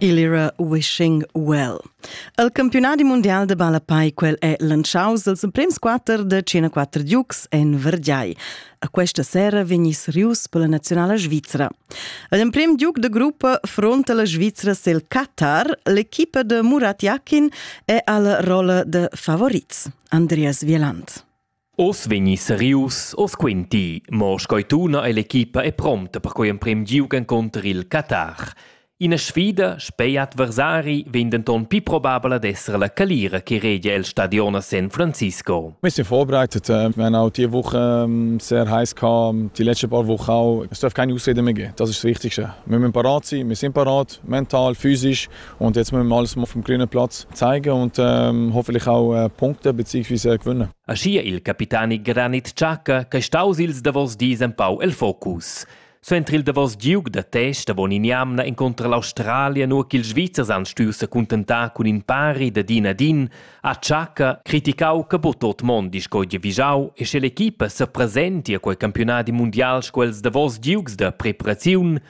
Igl era Wishing Well. El campiunadi mundial de ballapei quel è lantschaus els emprems quater de 104 Dukes en Vergiai. A questa sera vegnis rius per la nazionala svizra. L'emprim Duke de gruppa fronta la Svizra sil Qatar, l'equipa de Murat Yakin è alla rolla de favorits, Andreas Wieland. Oz vegni serius, oz quenti, mo sco tuna ei l'equipa è promta per quei emprem giug encunter il Qatar. Ina sfida spei adversari vegn denton pli probabel ad esser la calira che regia el stadion a San Francisco. Wir sind vorbereitet. Äh, wir haben auch diese Woche ähm, sehr heiß gehabt, die letzten paar Wochen auch. Es darf keine Ausreden mehr geben. Das ist das Wichtigste. Wir müssen parat sein, wir sind parat, mental, physisch. Und jetzt müssen wir alles mal vom grünen Platz zeigen und ähm, hoffentlich auch äh, Punkte bzw. gewinnen. Aschia il capitani Granit Xhaka che staus ils davos dis empau el focus. Suenter il davos giug da test avon in jamna incontra l'Australia nur ch'ils Svizzers han stuiu secuntentar cun in pari da din ad in, ha Xhaka criticau che bu tot mondi sco vigiau e sche l'equipa sepresenti a quei campionadi mundial sco els davos giugs da preparaziun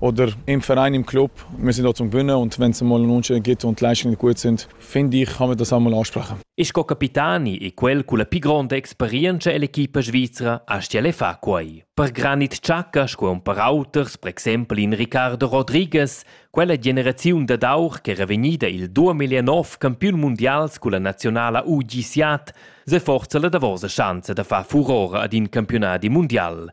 oder im Verein im Club, wir sind dort zum Gewinnen und wenn es einmal ein Unentschieden gibt und die Leistungen gut sind, finde ich, kann man das einmal ansprechen. Ist co capitani e quel con la più grande esperienza dell'equipa svizra astiele fa quai. Per Granit Ciacca, sco un per auters, per exempel in Ricardo Rodriguez, quella generaziun da d'aur ch'era vegnida il 2009 campiun mondials con la nazionala UGC, se forza la davosa chance da far furore ad in campionati mondial.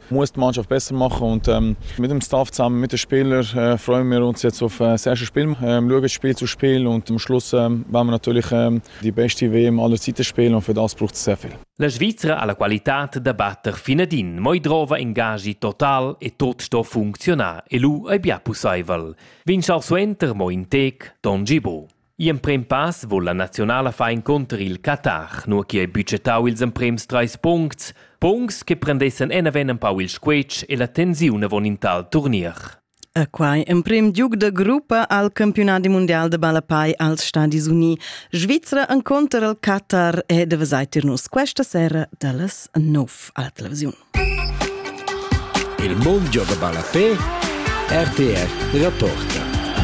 muss die Mannschaft besser machen und ähm, mit dem Staff zusammen mit den Spielern äh, freuen wir uns jetzt auf äh, das erste Spiel, ähm, schauen das Spiel zu Spiel und am Schluss ähm, werden wir natürlich ähm, die beste WM aller Zeiten spielen und für das braucht es sehr viel. La Svizzera ha la qualità da batter finadin, moi drova ingagi total e tot sto funzionar e lu ei bia pusseivel. Vin schar suenter mo in tec Don Gibo. Gl'emprem pass vo la naziunala far encunter il Qatar, nua chi ei budgetau ils emprems treis puncts, puncts che prendessen enaven empau il squetsch e la tensiun avon in tal turnier. E quai emprem giug da gruppa al campionadi mundial de ballapai als Stadis Uni. Svizra enconter al Qatar e de vesaitir nus questa sera dallas 9 alla televisione. Il mondo de ballapai RTR della Porta.